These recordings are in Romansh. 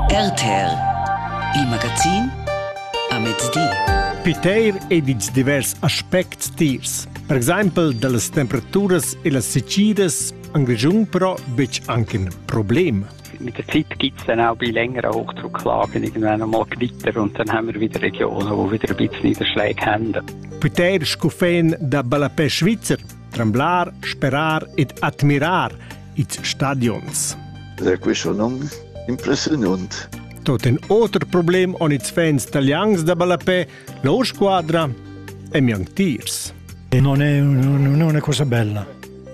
RTR, il magazin a mezdi. Piteir ed ils divers aspects tiers. Per exempel dallas temperaturas e las secidas han Grischun però betg anche in problem. Mit der Zeit gibt es dann auch bei längerer Hochdrucklagen irgendwann einmal Gewitter und dann haben wir wieder Regionen, die wieder ein bisschen Niederschläge haben. Piteir scufen da Ballapè Schweizer tremblar, sperar ed admirar ils stadions. Ed è questo non impressionant. Tot in otro problem on its fans italians da ballapè, la squadra e miang tiers. E non è, non è cosa bella.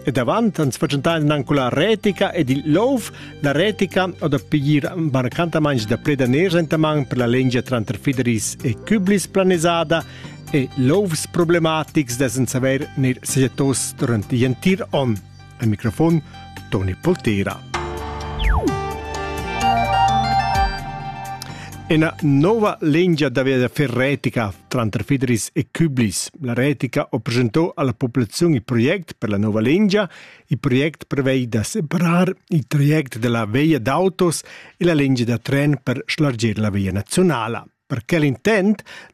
E davanti ans facentain anche la retica ed il louf, la retica o da piglier barcantamains da predaners entaman per la lengia tranter Fideris e Küblis planisada, e lovs problematics da saver ner sajettos durant l'entir on. Al microfon Toni Poltera. Una nuova linea da via fer retica tranter Federis e Küblis. La retica ho presentò alla popolazione il progetto per la nuova linea. Il progetto prevede da separar il traject della via d'autos e la linea da tren per slargire la via nazionale. Per quel intent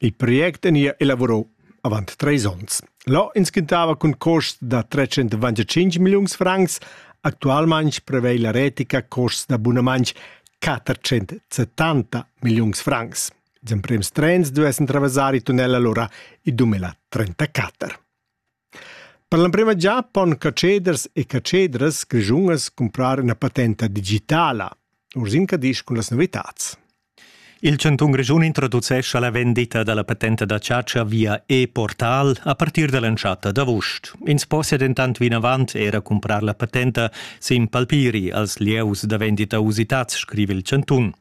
Il project vegnia elavurau avant treis onns. Là intschintava cun costs da 325 milliuns francs. Actualmein prevei la retica costs da bunamantsch 470 milliuns francs. Ils emprems trens duessen traversar i tunnel allora i 2034. Per l'emprema gia pon catscheders e catschedras grischunas cumprar ina patenta digitala. Ursin Cadisch cun las novitads. Il chantun Grischun introducescha la vendita da la patenta da chatscha via e-portal a partir da l'entschatta d'avust. Ins possia dentant vinavant era cumprar la patenta sin palpiri als lieus da vendita usitads, scriva il chantun.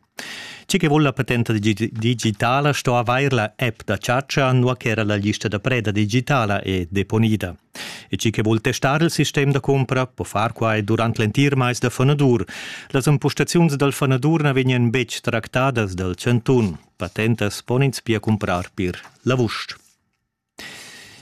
Tgi che vul la patenta digitala sto avair la app da chatscha, nua ch'era la lista da preda digitala è deponida. E tgi che vul testar il sistem da cumpra po far quai durant l'entir mais da fanadur. Las empustaziuns dal fanadur na vegnan betg tractadas dal chantun. Patentas pon ins pia cumprar pir la vusch.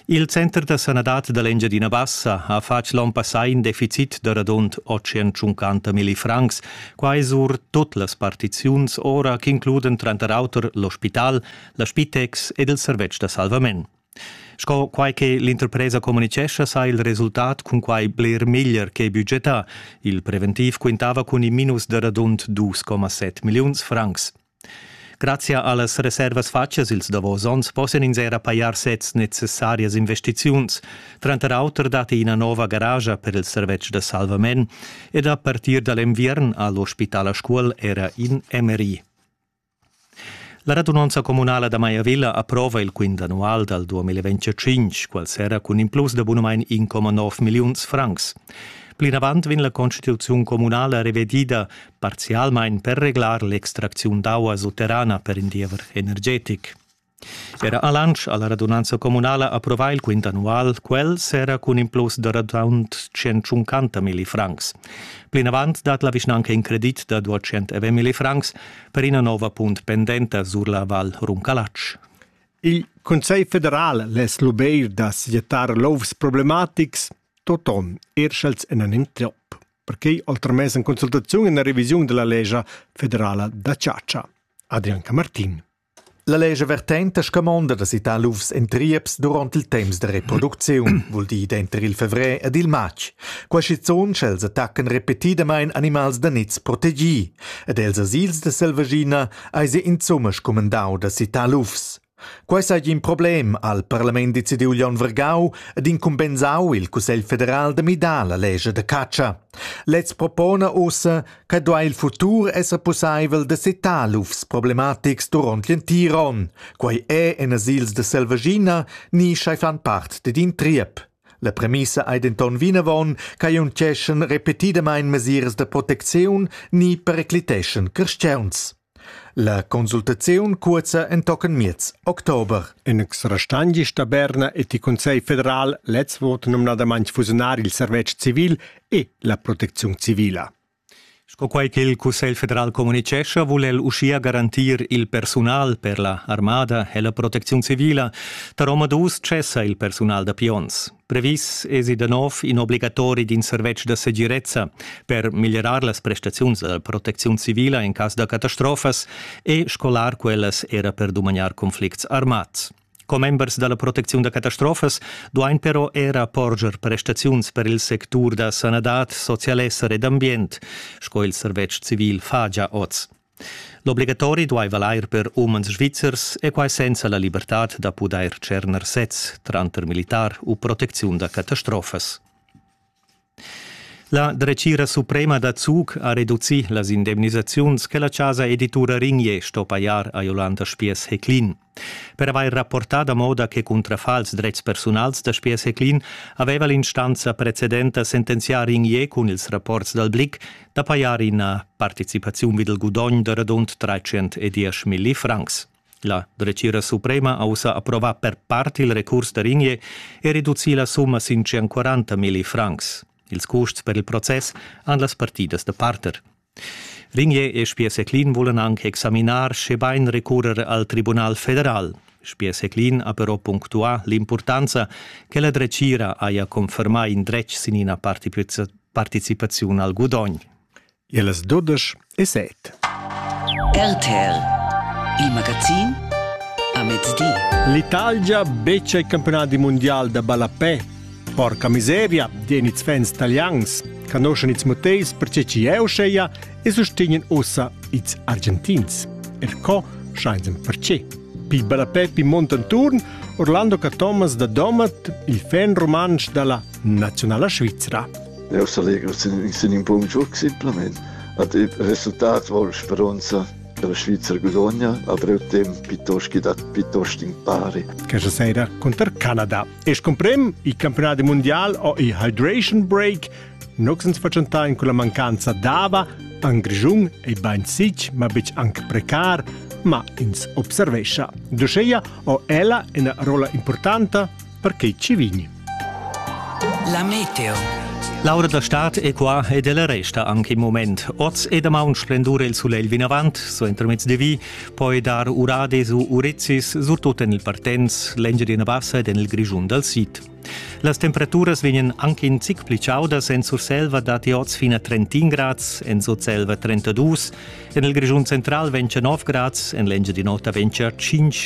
Il center da sanadad da l'Engiadina Bassa ha fatg l'onn passà in deficit da radund 850 millifrancs. Quai sur tot las partiziuns ora ch'includan tranter auter l'ospital, la Spitex ed il servetsch da salvament. Sco quai che l'interpresa communitgescha, sa il resultat cun quai bler meglier che budgetà. Il preventiv quintava cun in minus da radund 2,7 milliuns francs. Grazia allas reservas fatgas ils davos onns possian ins era pajar sezs necessarias investiziuns. Tranter auter datti ina nova garage per il servetsch da salvament ed a partir da l'enviern ha l'ospital a Scuol era in MRI. La radunanza communala da Maiavilla approva il quint annual dal 2025, qual serra cun in plus da bunamain 1,9 milliuns francs. Plinavant vegn la constituziun communala revedida parzialmain per reglar l'extracziun d'aua sutterrana per in diever energetic. Era a Lansch alla radunanza communala approvà il quint annual, quel s'era cun in plus da radund 150 milli francs. Plinavant dat la vischnanca in credit da 209 milli francs per ina nova punt pendenta sur la Val Runcalatsch. Il Consiglio federal les lubeir da sietar lovs problematics toton erschels en un entrop. perquei al tramess en consultaziun en la revisiun della lescha federala da chatscha. Adrian Camartin. La lescha vertenta scamonda da citar lufs en trieps durant il temps da reproducziun, vul dir denter il fevrer ed il matg. Qua schizun sch'els attaccan repetidamain animals da niz protegì, ed els asils de selvaschina eisi insomma scumandau da citar lufs. Quei seigi in problem, ha il parlament decidiu Leon Vergau ed incumbensau il Cussegl federal da midar la lescha da catscha. Lez propona ussa che duai il futur esser pusseivel da setar lufs problematics duront l'entir onn. Quei è en asils de Selvaggina ni schei fan part ded in triep. La premissa ei denton vinavon che unceschen repetidamein mesiras da protecziun ni pericliteschen crescents. La consultaziun cuozza entochen miez october. In exrastagn gis da Berna et il Conselh federal lez vot nomnadamain fusionar il servetsch civil e la protecziun civila. Sco quai che il Cussegl federal communicescha, vul el uschia garantir il persunal per la armada e la protecziun civila. Tar omadus cessa il persunal da pions. Previs esi da nov in obligatori d'in servetsch da segirezza per miglierar las prestaziuns da protecziun civila in cas da catastrofas e scolar quellas era per dumagnar conflicts armads. Commembers dalla protecziun da catastrofas duain però era porger prestaziuns per il sectur da sanadad, socialesser ed ambient, sco il servetsch civil fagia oz. L'obligatori duaiva l'eir per umans svizzers e quai senza la libertad da pudair tscherner sez tranter militar u protecziun da catastrofas. La dretgira suprema da Zug ha reducì las indemnisaziuns che la chasa editura Rignier sto pajar a Jolanda Spiess-Heclin. Per avair rapportà da moda che cuntrafa als dretgs persunals da Speer Seclin aveva l'instanza precedenta sentenziar in ie cun ils rapports dal Blick da pajar ina participaziun vid il gudogn da radund 310 milli francs. La dretgira suprema ha ussa approvà per part il recurs da Ringier e reducì la summa sin 140 milli francs. Ils custs per il process han las partidas da parter. Ligner e Spiesseclin vulan anc examinar, schebain recurrer al Tribunal federal. Spiesseclin ha però punctuà l'impurtanza che la dretgira haja confermà in dretg sin ina participaziun al gudogn. E las dudesch e set. RTL, il magazin a mezdi. L'Italia beccia il campionato mondiale da ballapè Porca miseria, den its fans italians, canoscen its moteis perche chi eu scheia e sustegnen ossa its Argentins. Er co schein perché. Pi bellapè pi montanturn Orlando Cathomas da Domat, il fan romansch dalla nazionala Svizzera. Eu s'allegro sin in bun giuc simplement. Ad il resultat vol speronza che la Svizzera guadogna a breu temp piuttosto che dat piuttosto impari. Questa sera contro Canada. Es cumprim, il campionat mundial o il hydration break nox ans fatschentà in quella mancanza d'ava an Grischun e bain sich, ma betg anche precar, ma ins observescha. Duscheia o ella ina rola importanta per che ci vigni. La meteo. L'aura da stad è qua ed ella resta anche im moment. Oz e damaun splendura il sulegl vinavant, so entro mezdi vi, poi dar urades u urezis surtut en il Partenz, l'Engiadina Bassa ed en il Grischun dal sid. Las temperaturas vegnan anche in zic pli chaudas en Surselva datti oz fin a 30 grads, en Sutselva 32, en il Grischun central vegn 9 grads, en l'Engiadin'Ota vegn 5.